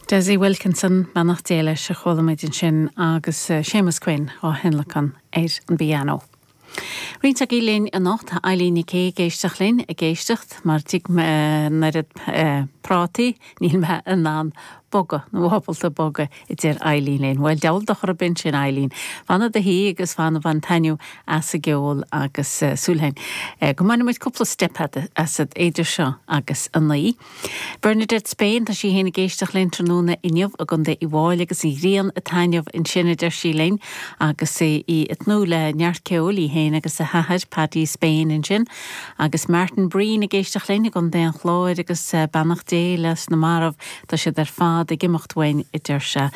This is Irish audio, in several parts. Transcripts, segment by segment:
Desi Wilkinson, Beannacht Dé leis, a chuala muid ansin agus Séamus Quinn á thionlacan ar an bpianó. Roinnt agaibh linn anocht, tá Eileen Nic Aoidh ag éisteacht linn, ag éisteacht mar d'ith mé an oiread prátaí níl mé in ann bogadh, nó ábalta bogadh. a deir Eileen linn. Bhuel, dheamhan dochar a bheith ansin, a Eileen. Fan i do shuí agus fan ag baint taitneamh as an gceol agus súil againn go mbainfidh muid cúpla steip asat idir seo agus a naoi. Bernadette Spain, tá sí féin ag éisteacht linn tráthnóna inniu i gContae Uíbh Fhailí agus an ghrian ag taitneamh ansin a deir sí linn agus í ag tnúth le neart ceoil, í féin agus a hathair, Paddy Spain ansin agus Martin Breen ag éisteacht linn i gContae an Chláir agus beannacht Dé leis na mairbh. Tá siad ar fad ag imeacht uainn, a deir sé.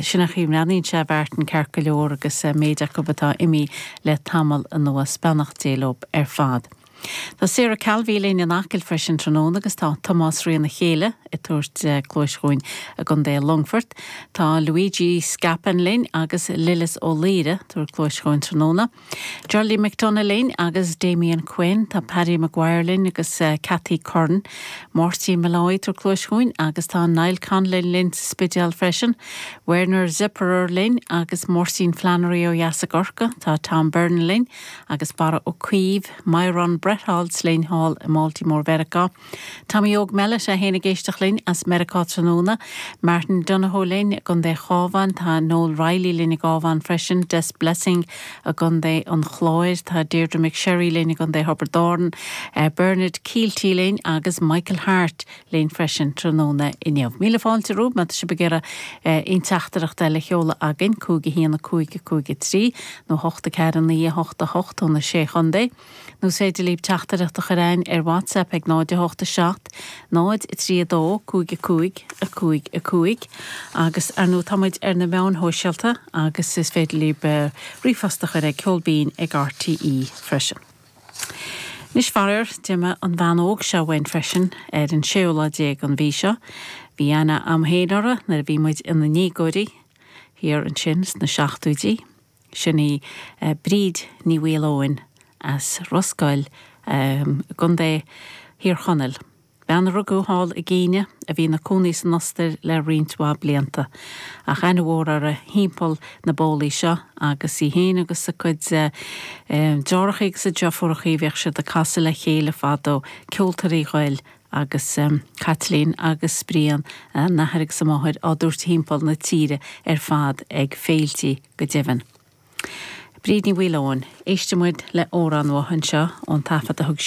Sin an chaoi a mbreathnaíonn sé a Mhartin, ceart go leor, agus méid acu atá imí le tamall anuas. Beannacht Dé leo ar fad. Tá Sarah Calvey linn in Acaill freisin tráthnóna agus tá Tomás Ryan, a chéile, ag tabhairt cluais chugainn i gContae Longfoirt. Tá Luigi Scapin linn agus Lillis Ó Laoire, ag tabhairt cluais chugainn tráthnóna. Geraldine McDonagh linn agus Damien Quinn, tá Paddy Maguire linn agus Cathy Curran, Máirtín Molloy ag tabhairt cluais chugainn agus tá Niall Conlon linn sa Spidéal freisin, Werner Zipperer linn agus Máirtín Flannery ó dheas i gCorcaigh, tá Tom Byrne linn agus Barra Ó Caoimh, Myron Bretholz linn thall i mBaltimore Mheiriceá. Tommy Óg Mellett é féin ag éisteacht linn as Meiriceá tráthnóna, Martin Donohoe linn i gContae an Chabháin, tá Noel Reilly linn sa gCabhán freisin, Des Blessing i gContae an Chláir, tá Deirdre McSherry linn i gContae Thiobraid Árann, Bernard Kielty linn agus Michael Harte linn freisin tráthnóna inniu. Míle fáilte romhaibh má tá sibh ag iarraidh aon teachtaireacht a sheoladh againn, 5 1 5 5 3 nó 8 4 9 8 8 ó na Sé Chontae. Nó is féidir libh teachtaireacht a chur againn ar WhatsApp ag 0 8 7 0 3 2 5 5 5 5 agus ar ndóigh tá muid ar na meáin shóisialta agus is féidir libh ríomhphost a chur ag ceol binn ag RTÉ freisin. Anois faraor d'imigh an bhean óg seo uainn freisin ar an séú lá déag an mhí seo. Bhí an-aithne againn fhéin uirthi nuair a bhí muid ina ndéagóirí thiar ansin sna seachtóidí. Sin í Bríd Ní Mhaoileoin as Ros Goill i gContae Thír Chonaill. Bean a rugadh thall i gCéinia a bhí ina cónaí san Ostair le roinnt mhaith blianta. Ach aithne mhór uirthi thimpeall na bólaí seo agus í fhéin agus a cuid deartháireachaí agus a deirfiúrachaí bhíodh siad ag casadh le chéile fadó, Ceoltóirí Ghoill agus Caitlín agus Brian a n-athair agus a máthair á dtabhairt thimpeall na tíre ar fad ag féiltí go deimhin. Bríd Ní Mhaoileoin. Éistfidh muid le hamhrán uaithi anseo ón taifead a thug sí